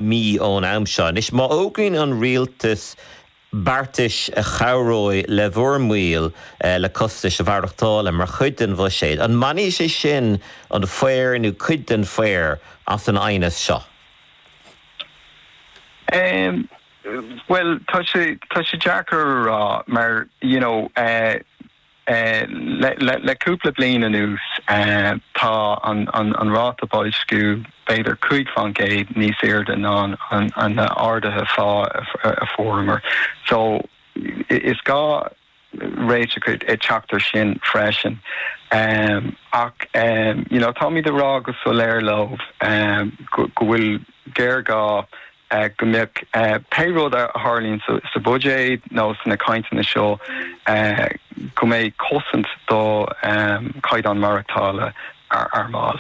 mí ón am seo. Anois, má fhógraíonn an rialtas beartais a chabhróidh le bhur mbaill le costais mhaireachtála mar chuid den bhuiséad, an mbainfidh sé sin an faobhar nó cuid den faobhar as an aighneas seo? Bhuel, tá, tá sé deacair a rá mar, you know. Le cúpla bliain anuas, tá an ráta boilsciú b'fhéidir cúig faoin gcéad níos airde ná na arduithe phá a fuaireamar, só is gá réiteach a fháil ar sin freisin. Ach you know táimid a rá go soiléir leo go bhfuil géarghá go mbeadh pé rud a tharlaíonn sa bhuiséad nó sna cainteanna seo go mbeidh cosaint do chaighdeán maireachtála ár mball.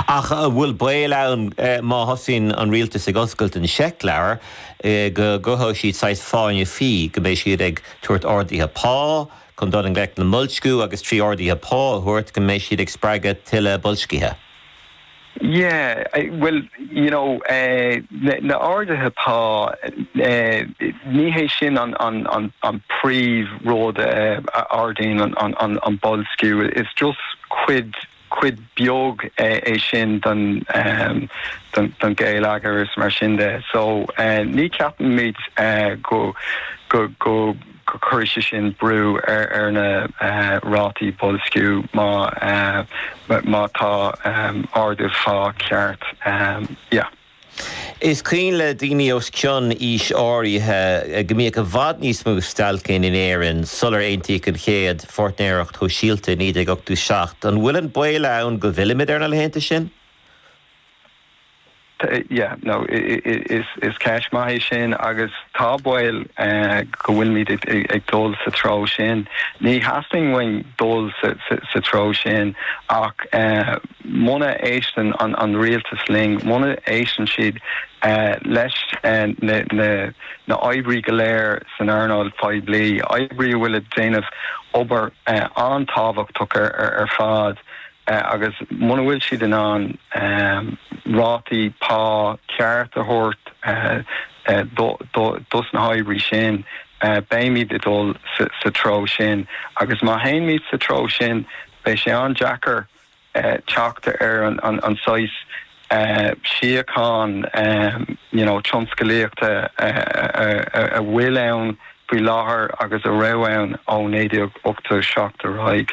Ach an bhfuil baol ann má thosaíonn an rialtas ag oscailt an seicleabhar go gcruthóidh siad saghas fáinne fí, go mbeidh siad ag tabhairt arduithe pá chun dul i ngleic le boilsciú agus trí arduithe pá a thabhairt go mbeidh siad ag spreagadh tuilleadh boilscithe? Yeah, bhuel, you know, na arduithe pá, ní hé sin an príomh rud a ardaíonn an boilsciú, is just cuid, cuid beag é sin don, don ghéilleagar agus mar sin de. So, ní cheapaimid go, go, go. Cuirfidh sé sin brú ar na rátaí boilsciú má, má tá ardú phá ceart. Yeah. Is cuimhin le daoine os cionn aois áirithe go mbíodh i bhfad níos mó stailceanna in Éirinn sular aontaíodh an chéad pháirtnéireacht shóisialta i 1987. An bhfuil an baol ann go bhfillfimid ar na laethanta sin? yeah no is ceist mhaith í sin agus tá baol go bhfuilimid ag dul sa treo sin. Ní theastaíonn uainn dul sa treo sin ach muna éisteann an rialtas linn, muna éisteann siad leis na oibrí go léir san earnáil phoiblí, oibrí a bhfuil ag déanamh obair an-tábhachtach ar fad, agus muna bhfuil siad in ann rátaí pá ceart a thabhairt dos na hoibrí sin, beimid ag dul sa treo sin, agus má théimid sa treo sin, beidh sé an-deacair teacht ar an saghas síocháin, you know, tionsclaíochta a bhfuil ann faoi láthair agus a raibh ann ó 1987 ar aghaidh.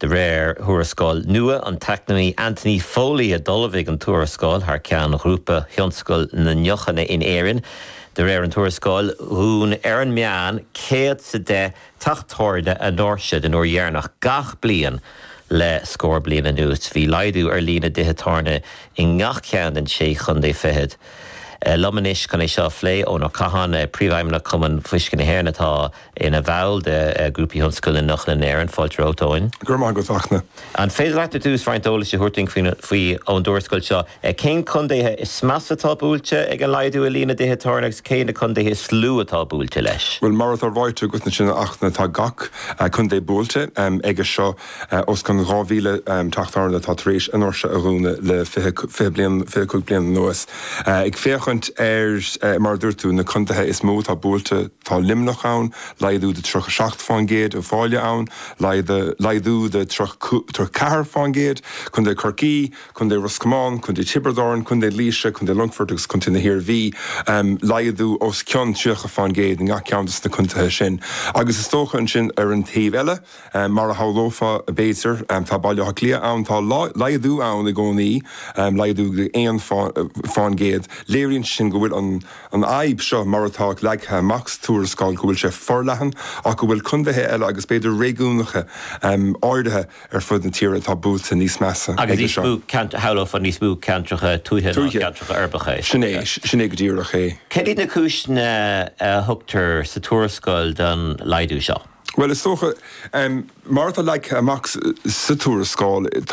De réir thuarascáil nua an t-eacnamaí Anthony Foley a d'ullmhaigh an tuarascáil thar ceann Ghrúpa Thionscal na nDeochanna in Éirinn, de réir an tuarascáil, dhún ar an meán 100 is a 10 teach tábhairne a ndoirse den uair dheireanach gach bliain le scór bliain anuas. Bhí laghdú ar líon na dtithe tábhairne i ngach ceann den sé chontae fichead. Liom anois chun é seo a phlé Eoin Ó Catháin, Príomhfheidhmeannach Chumann Fuisce na hÉireann atá. Ina bhall de Ghrúpa Thionscal na nDeochanna in Éirinn, fáilte romhat, Eoin. Go raibh maith agat, Fachtna. An féidir leat ar dtús roinnt eolais a thabhairt dúinn faoin dtuarascáil seo? Cé na condaetha is measa atá buailte ag an laghdú i líon na dtithe tábhairne agus cé na condaetha is lú atá buailte leis? Bhuel, mar atá ráite agat ansin, a Fhachtna, tá gach condae buailte aige seo. Os cionn 2,000 teach tábhairne atá tar éis a ndoirse a dhúnadh le fiche, fiche bliain, fiche cúig bliain anuas. Ag féachaint ar, mar a dúirt tú, na contaetha is mó atá buailte, tá Luimneach ann, laghdú de 37%, Uíbh Fhailí ann, laghdú de 34%, Contae Chorcaí, Contae Ros Comáin, Contae Tiobraid Árann, Contae Laoise, Contae Longfoirt agus Contae na hIarmhí, laghdú os cionn 30% i ngach ceann de na contaetha sin. Agus is dócha ansin, ar an taobh eile, Mar a shamhlófá, b'fhéidir, tá Baile Átha Cliath ann, tá laghdú ann i gcónaí, laghdú de 1 fán gcéad. Léiríonn sé sin go bhfuil an fhadhb seo mar atá leagtha amach sa tuarascáil, go bhfuil sé forleathan ach go bhfuil contaetha eile agus b'fhéidir réigiúnacha áirithe ar fud na tíre atá buailte níos measa aige seo. Shamhlófá níos mó ceantracha tuaithe ná ceantracha uirbeacha, is é sin. Sin é go díreach é. Cad iad na cúiseanna a thugtar sa tuarascáil don laghdú seo? Bhuel, is dócha, mar atá leagtha amach sa tuarascáil, tá.